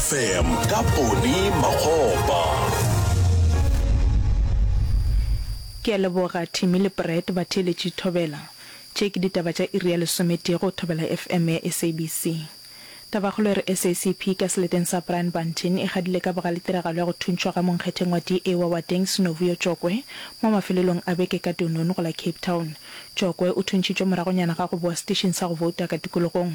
Fm ka Poni Makgopa. Ke a leboga Timmy le Brett batheeletši Thobela. Tše ke ditaba tša iri ya lesometee go Thobela FM ya SABC. Tabakgolo e re SACP ka seleteng sa Brian Bunting e gadile ka bogale tiragalo ya go thuntšhwa ga monkgetheng wa DA wa Wateng Sinovuyo Tjokwe mo mafelelong a beke ka Dunoon go la Cape Town. Tšokwe o thuntšhitšwe moragonyana ga go bowa seteišing sa go bouta ka tikologong.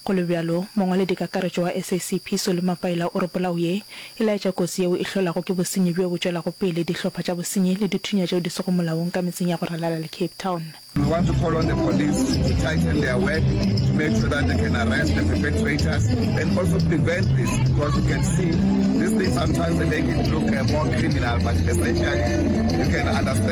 Go le bjalo, mongwaledikakaretšo wa SACP Solly Mapaila o re polao ye e laetša kotsi yeo e hlolago ke bosenyi bjo bo tšwelago pele, dihlopha tša bosenyi le dithunya tšeo di sego molaong ka metseng ya go ralala le Cape Town. We want to call on the police to tighten their work to make sure that they can arrest the perpetrators and also prevent this because you can see these things sometimes they make it look more criminal but essentially you can understand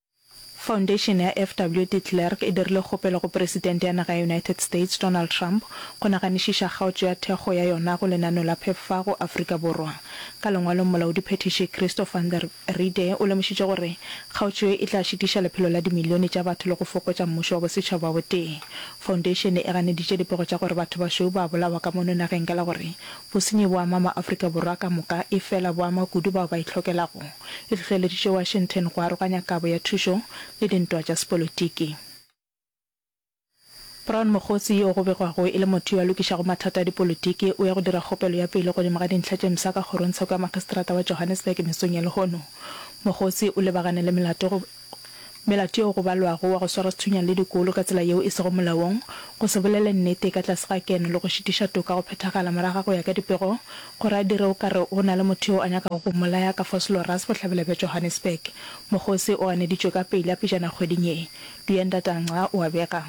Foundation ya FW de Klerk e dirile kgopelo go Presidente ya naga ya United States, Donald Trump, go naganišiša kgaotšo ya thekgo ya yona go lenaneo la pheffa go Afrika Borwa. Ka lengwalong, Molaodiphethiši Christo van der Riede o lemošitše gore kgaotšo ye e tla šitiša lephelo la dimilione tša batho le go fokotša mmušo wa bosetšhaba o tee. Foundation e ganeditše dipego tša gore batho bašweu ba a bolawa ka mono nageng ka la gore bosenyi bo ama ma-Afrika Borwa ka moka efela bo ama kudu bao ba itlhokelago e hlohleleditše Washington go aroganya kabo ya thušo le dintwa tša sepolotiki. Brown Mokgotsi yo go begwago e le motho yo a lokišago mathata a dipolotiki o ya go dira kgopelo ya pelo godimo ga dintlha tše msa ka kgorongtsheko ya makgistrata wa Johannesburg mesong ya lehono. Mokgotsi o lebagane le melato go Melato yeo go balwago wa go swara sethunyana le dikolo ka tsela yeo e sego molaong, go se bolele nnete ka tlase ga keno le go šitiša toka go phethagala morago ga go ya ka dipego, go ra dire o ka re go na le motho yo a nyakago go mmolaya ka Vosloorus bohlabela bja Johannesburg. Mokgosi o ganeditšwe ka pejla pejana kgweding ye. Duyendata Ngca o a bega.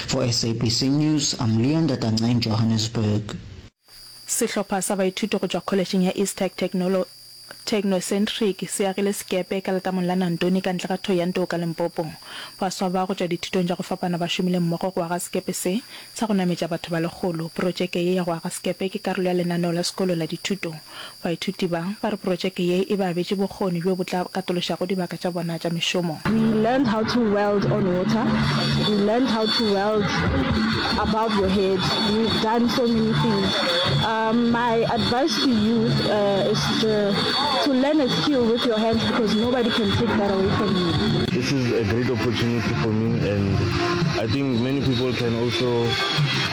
For SABC News, I'm Leon Datanca in Johannesburg. Sehlopha sa baithuti go tšwa kholetšheng ya Eastec Technolo Technocentric se agile sekepe ka letamong la Nantoni ka ntle ga Thohoyandou ka Limpopo. Baswa ba go tšwa dithutong tša go fapana ba šomile mmogo go aga sekepe se sa go nametša batho ba lekgolo. Protšeke ye ya go aga sekepe ke karolo ya lenaneo la sekolo la dithuto Baithuti ba, ba re protšeke ye e ba abetše bokgoni bjo bo tla katološago dibaka tša bona tša mešomo. We learned how to weld on water, we learned how to weld above your head, we've done so many things. My advice to you is to learn a skill with your hands because nobody can take that away from you. This is a great opportunity for me and I think many people can also.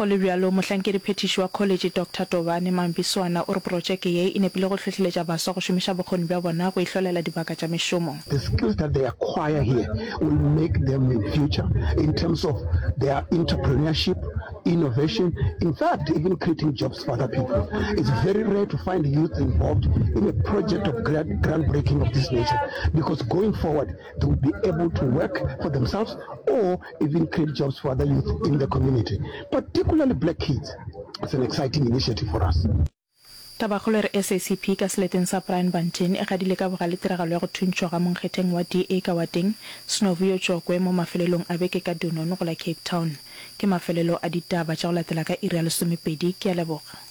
Go le bjalo, mohlankediphethiši wa kholetše Doctor Tobane Mambiswana o re protšeke ye e nepile go hlohleletša baswa go šomiša bokgoni bja bona go ihlolela dibaka tša mešomo. The skills that they acquire here will make them in future in terms of their entrepreneurship, innovation, in fact even creating jobs for other people. It's very rare to find youth involved in a project of groundbreaking of this nature because going forward They will be able to work for themselves or even create jobs for other youth in the community, particularly black kids. It's an exciting initiative for us. Tabakgolo e re SACP ka seleteng sa Brian Van Dien e gadile ka bogale tiragalo ya go thuntšhwa ga monkgetheng wa DA ka wateng Snovuyo Chokwe mo mafelelong a beke ka Dunoon go la Cape Town. Ke mafelelo a ditaba tša go latela ka iri ya lesomepedi. Ke a leboga.